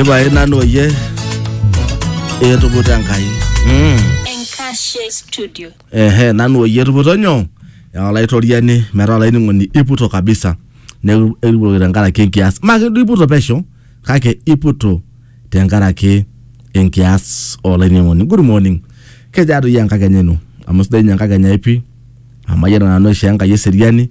ipae nanu oyie etuputa enkai mm. Enkashe Studio. ehe nanu oyie etuputo nyoo Ewa olaitoriani metaa olainining'oni iputo kabisa neeku ekiputoki tenkaraki enkias maa keduo iputo pesho kake iputo tenkaraki enkias olainining'oni good morning kejaa doi enkakenya ino amu sidai ninye enkakenya ai pii amu ayiolo nanu aishoo enkai eseriani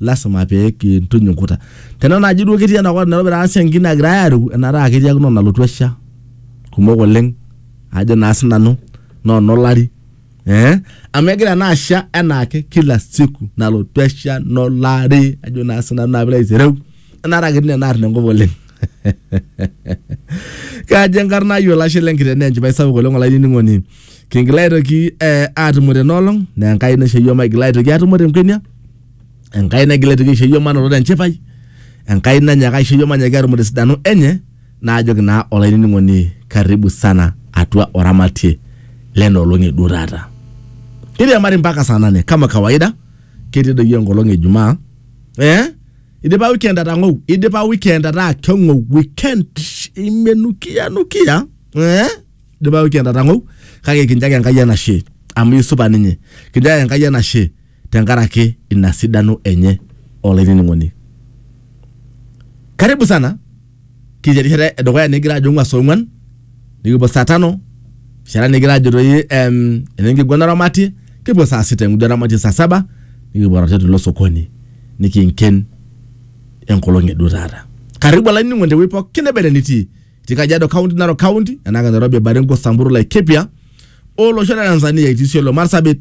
lasima pee kintuny inkuta. Tena naaji duo ketii ena kop Nairobi taata siankiki naagira aareu enaata ketiakino nalotu esha kumok oleng ajo naa sinanu naa enolari ee amu egira naa asha enaake kila siku nalotu esha nolari ajo naa sinanu naa piilo aitereu enaata ketii nena arn enkop oleng. Kajo enkarna ai olashe lenkiteng naa enchipai sapuk oleng olainining'oni kingila aitoki eh, atumo tena olong naa enkai naisho iyiok maigila aitoki atumo tenkwenia enkai naigila aitoki aisho iyiok manoto tenchipai enkai nanyaka aisho iyiok manyaki atumo tesidano enye naajoki naa olainining'oni karibu sana atua oramatie lena olong eduo taata kiriamari mpaka saa nane kama kawaida ketii doi enkolong e jumaa eh? idipa weekend atang'ou idipa weekend ataa keng'ou weekend imenukia nukia eh? dipayu kiata tang'ou kake kinchaki Enkai enashe amu isupa ninye. Kinchaki Enkai enashe tenkaraki ina sidano enye olainining'oni. Karibu sana kitii erishata edukuya nikigira ajo ng'ua saa ong'uan nikipuo saa tano erishata nikigira ajo toi em, enenkiguana oramatie kipuo saa sita engudo oramatie saa saba nikipuo arotie tilo sokoni nikinken enkolong e duo taata. Karibu olainining'oni tewueji pookin neba ene nitii. etii Kajiado County, Narok County, enake Nairobi, Baringo, Samburu, Laikipia o losho le Tanzania etii Isiolo, Marsabit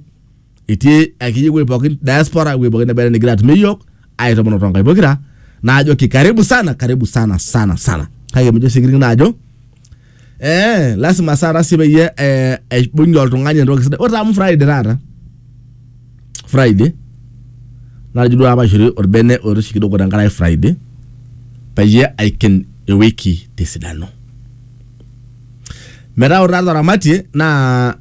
etii akeyie ewueji pookin diaspora ewueji pookin nebaita nigira atum iyiook aitomono too nkaik pokira naajoki karibu sana karibu sana sana sana kake mijo sii kining naajo eh, lasima sana sii peyie eh, aibung'ie oltung'ani entoki sidai ore amu Friday taata Friday natejo duo apa aishori orbene oiroshi kidogo tenkaraki Friday peyie aiken ewiki tesidano. Metaa ore taata oramatie naa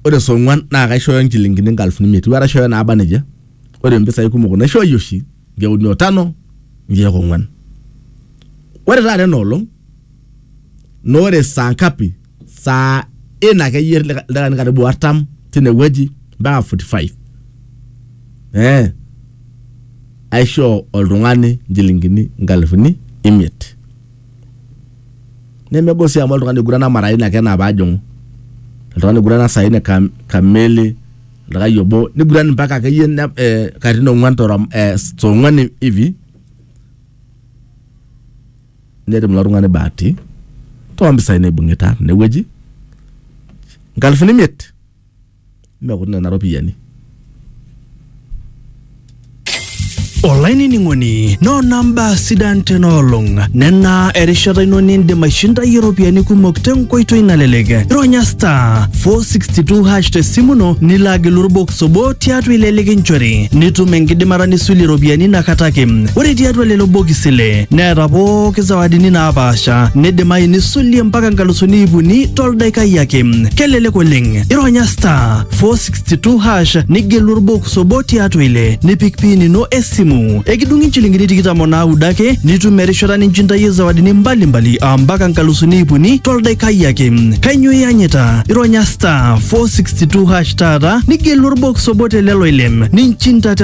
ore saa ong'wan naa kaishooyo nchilingini inkalifuni imiet iwuo aishooyo naaba nejia ore impisai kumok naishooyie oshi nkeek uni o tano nkeek ong'wan. Ore taata ena olong naa ore saa ngapi saa in akeyie lika- ildakikani karibu artam tinewueji mpaka 45 eh, aishoo oltung'ani nchilingini nkalifuni imiet nemegol sii amu oltung'ani oigurana mara ina ake enaa paajing'u oltung'ani oigurana saa ine kam, kamili oltung'ani obo niguran mpaka akeyie ne- eh, katitin ong'uan torom eh, tong'uan hivi netum ilo tung'ani bahati too mpisai naibung'ita tine wueji nkalifuni imiet mekuti nena ropiyiani. olainining'oni noona mbaa sidan tena olong nena erishata ino nindim aishindayie iropiyiani kumok tenkoitoi nalelek ironya star 462 hash tesimu ino nilo agilu orbox Sobo tiatua ile likinchori nitum enkidimata nisulie iropiyiani inakata ake. Ore tiatua lelo bokisi ile neeta pooki zawadini naapaasha nidimayu nisulie mpaka nkalusuni iip uni toldaikai ake. Kelelek oleng. Ironya star 462 hash nigelu orbox obo tiatua ile nipik pin ino esimu. Ekidung'i nchilingini tikitam o naudo ake nitum erishata ninchintayie zawadini mbalimbali aa mpaka nkalusuni iip uni toldaikai ake. Kainyoo iyanyita? Ironya star 462 hash taata nigelu orbox obo te lelo ile ninchintata